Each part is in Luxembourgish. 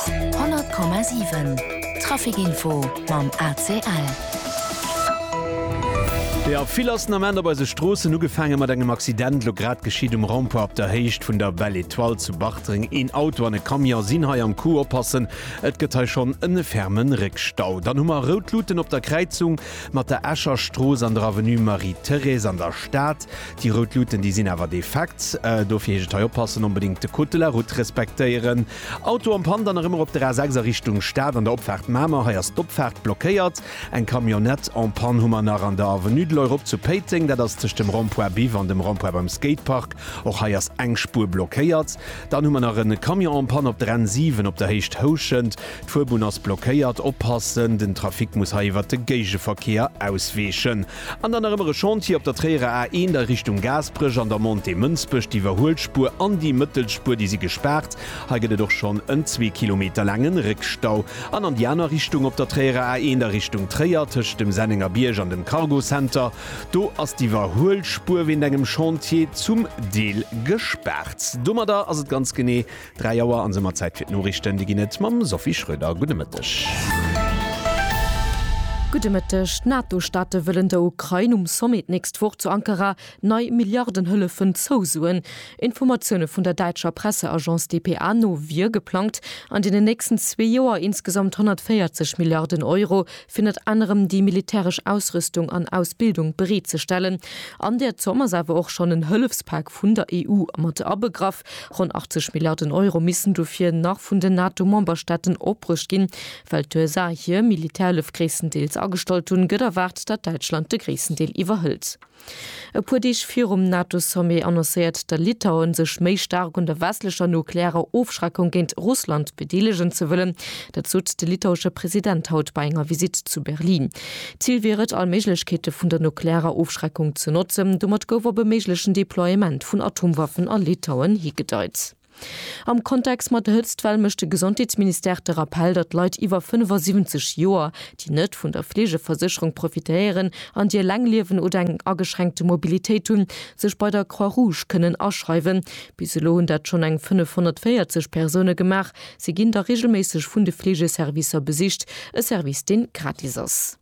100,7 Trafic Info mam ACL. Jo vill ass den Ament op eise Stroossen, ugefaange mat engem Accident elo grad geschitt um Rond-point op der Héicht vun der Belle Etoile zu Bartreng. Een Auto an e Camion sinn hei am Coup, oppassen, et gëtt hei schonn e ferme Réckstau. Dann hu mer rout Luuten op der Kräizung mat der Escher Strooss an der Avenue Marie-Thérèse an der Stad. Déi rout Luuten, déi sinn awer defekt. Dofir heescht et hei oppassen, onbedéngt de Code de la route respektéieren. Auto am Panne, dann erëm erop der A6 a Richtung Stad an der Opfaart Mamer. Hei ass d'Opfaart blockéiert. Eng Camionnette en panne hu mer nach an der Avenue de l'Europe zu Péiteng. Dat ass tëscht dem Rond-point Biff an dem Rond-point beim Skatepark. Och hei ass eng Spuer blockéiert. Dann hu mer nach e Camion en panne op der N 7 op der Héicht Houschent. D'Fuerbunn ass blockéiert. Oppassen, den Trafic muss hei iwwert de Géigeverkehr ausweechen. An dann nach ëmmer e Chantier op der Tréierer A1 a Richtung Gaasperech an der Montée Mënsbech. D'Iwwerhuelspur an déi Mëttelspur, déi si gespaart. Hei gëtt et och schonn en zwee Kilometer laange Réckstau. An an déi aner Richtung op der Tréierer A1 a Richtung Tréier, tëscht dem Sennenger Bierg an dem Cargo Center, do ass d'Iwwerhuelspur wéint engem Chantier zum Deel gespaart. Domadder ass et ganz genee Dräi Auer an soumat Zäit fir d'Noriichten. Déi ginn et mam Sophie Schröder. Gudde Mëtteg. Gudde Mëtteg. D'NATO-Staate wëllen der Ukrain um Sommet d'nächst Woch zu Ankara nei Milliardenhëllefen zousoen. Informatioune vun der däitscher Presseagence dpa no wier geplangt, an deenen nächsten zwee Joer insgesamt 140 Milliarden Euro fir ënnert anerem déi militäresch Ausrüstung an Ausbildung bereetzestellen. An där Zomm ass awer och schonn en Hëllefspak vun der EU mat abegraff. Ronn 80 Milliarden Euro missten dofir nach vun den NATO-Memberstaaten opbruecht ginn. Well d'USA hir Militärhëllef gréisstendeels agestallt hunn, gëtt erwaart, datt Däitschland de gréissten Deel iwwerhëlt. E puer Deeg virum NATO-Sommet annoncéiert de Litauen, sech méi staark un der westlecher nuklearer Ofschreckung géint Russland bedeelegen ze wëllen. Dat sot de litauesche President haut bei enger Visitt zu Berlin. D'Zil wier et, all Méiglechkeete vun der nuklearer Ofschreckung ze notzen. Domat gouf op e méiglechen Deploiement vun Atomwaffen a Litauen higedeit. Am Kontext mat der Hëtztwell mécht de Gesondheetsministère de Rappell, datt Leit iwwer 75 Joer, déi net vun der Fleegeversécherung profitéieren an déi eleng liewen oder eng ageschränkte Mobilitéit hunn, sech bei der Croix-Rouge kënnen aschreiwen. Bis elo hunn dat schonn eng 540 Persoune gemaach, Si ginn da reegelméisseg vun de Fleegeservicer besicht, e Service dee gratis ass.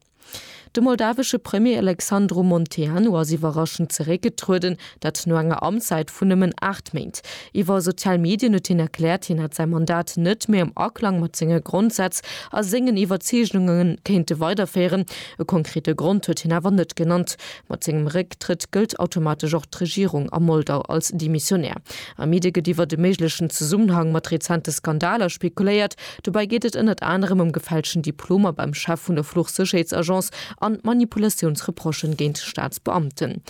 De moldawesche Premier Alexandru Monteanu ass iwwerraschend zeréckgetrueden, dat no enger Amtszäit vun nëmmen 8 Méint. Iwwer sozial Medien huet hien erkläert, hien hätt säi Mandat net méi am Aklang mat senge Grondsätz a sengen Iwwerzeegunge kéinte weiderféieren. E konkrete Grond huet hien awer net genannt. Mat sengem Récktrëtt gëllt automatesch och d'Regierung a Moldau als demissionär. Am Midi gëtt iwwert e méiglechen Zesummenhang mat rezente Skandaler spekuléiert. Dobäi geet et ënnert anerem ëm gefälschten Diplomer beim Chef vun der Fluchsécherheetsagence an Manipulatiounsreprochen géint Staatsbeamten.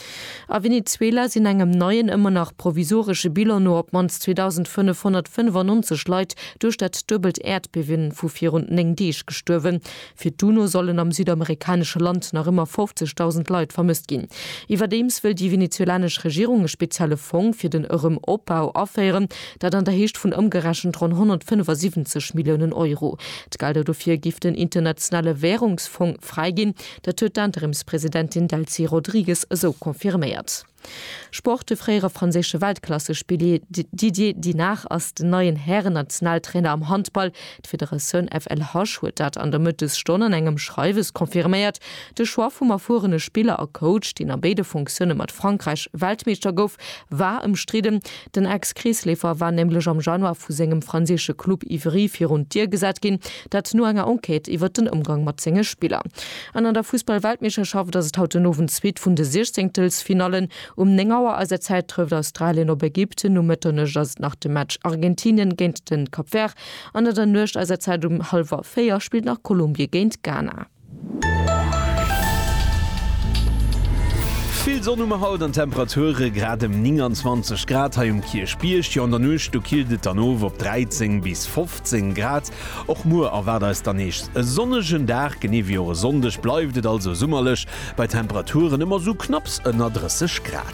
A Venezuela sinn engem neien, ëmmer nach provisoresche Bilan no op d'mannst 2.595 Leit duerch dat duebelt Äerdbiewen vu virun 9 Deeg gestuerwen. Fir d'UNO sollen am südamerikanesche Land nach ëmmer 50.000 Leit vermësst ginn. Iwwerdeems wëll déi venezuelanesch Regierung e spezielle Fong fir den Erëm-Opbau aféieren, dat an der Héicht vun ëmgerechent ronn 175 Milliounen Euro. D'Gelder dofir giff den Internationale Währungsfong fräiginn. Dat huet d'Interimspresidentin Delcy Rodrigues esou confirméiert. Sport, De fréiere franséische Weltklassespillier Didier Dinard ass den neien Hären-Nationaltrainer am Handball. D'Federatioun FLH huet dat an der Mëttesstonn an engem Schreiwes confirméiert. De Choix vum erfuerene Spiller a Coach, deen a béide Funktioune mat Frankräich Weltmeeschter gouf, war ëmstridden. Den Ex-Kreesleefer war nämlech am Januar vu sengem franséische Club Ivry virun d'Dier gesat ginn. Dat no enger Enquête iwwert den Ëmgang mat senge Spiller. An an der Fussballweltmeeschterschaft ass et haut den Owend d'Suite vun de Siechzéngtelsfinallen. Um 9 Auer eiser Zäit trëfft Australien op Ägypten, um Mëtternuecht ass et nach de Match Argentinien géint de Cap Vert an an der Nuecht eiser Zäit um hallwer 4 spillt nach Kolumbie géint Ghana. Vill Sonn hu mer haut an d'Temperature grad ëm 29 Grad hei um Kierchbierg. Jo an der Nuecht do killt et dann of op 13 bis 15 Grad. Och muer erwaart eis dann nees e sonnegen Dag, genee wéi och e Sonndeg bleift et also summerlech bei Temperaturen ëm esou knapps ënner 30 Grad.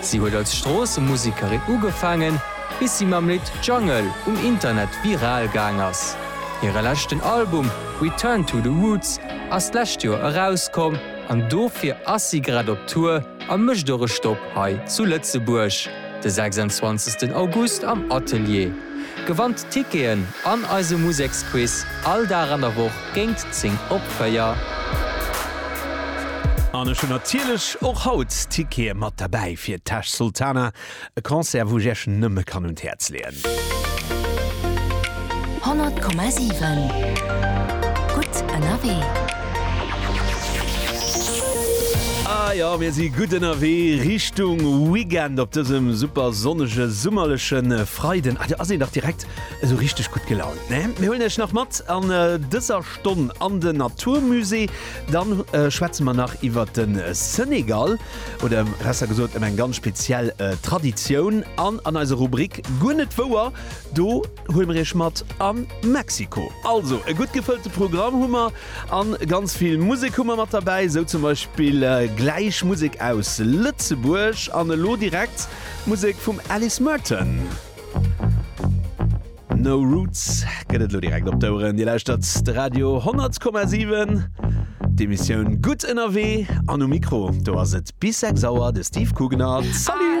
Si huet als Stroossemusekerin ugefaangen, bis si mam Lidd Jungle um Internet viral gaang ass. Hire leschten Album Return to the Roots ass d'lescht Joer erauskomm an dofir ass si grad op Tour a mécht och e Stopp hei zu Lëtzebuerg de 26 August am Atelier. Gewannt Ticketen an eise Museksquiz all Dag an der Woch. géint 10 op 4. An ech hunn natierlech och haut Tickete mat derbäi fir Tash Sultana, e Concert wou ech iech nëmme kann un d'Häerz leeën. 100,7 Gutt ënnerwee. A jo, mir si gutt ënnerwee Richtung Weekend op dësem super sonnege summerleche Freiden. Ah, do ass een dach direkt Esou richteg gutt gelaunt, ne? Mir huelen Iech nach mat an dëser Stonn an den Naturmusée. Dann schwätze mer nach iwwert de Senegal oder besser gesot ëm eng ganz speziell Traditioun. An an eiser Rubrik Guer net wouer, do huele mer Iech mat a Mexiko. Also e gutt gefëllte Programm hu mer a ganz vill Musek hu mer mat derbäi. Esou zum Beispill gläich Musek aus Lëtzebuerg an elo direkt Musek vum Alice Merton. No Roots gëtt et lo direkt op d'Oueren. Dir lauschtert de Radio 10,7. D'Emissioun Gutt ënnerwee an um Mikro, do ass et bis 6 Auer de Steve Kugnert. Salut!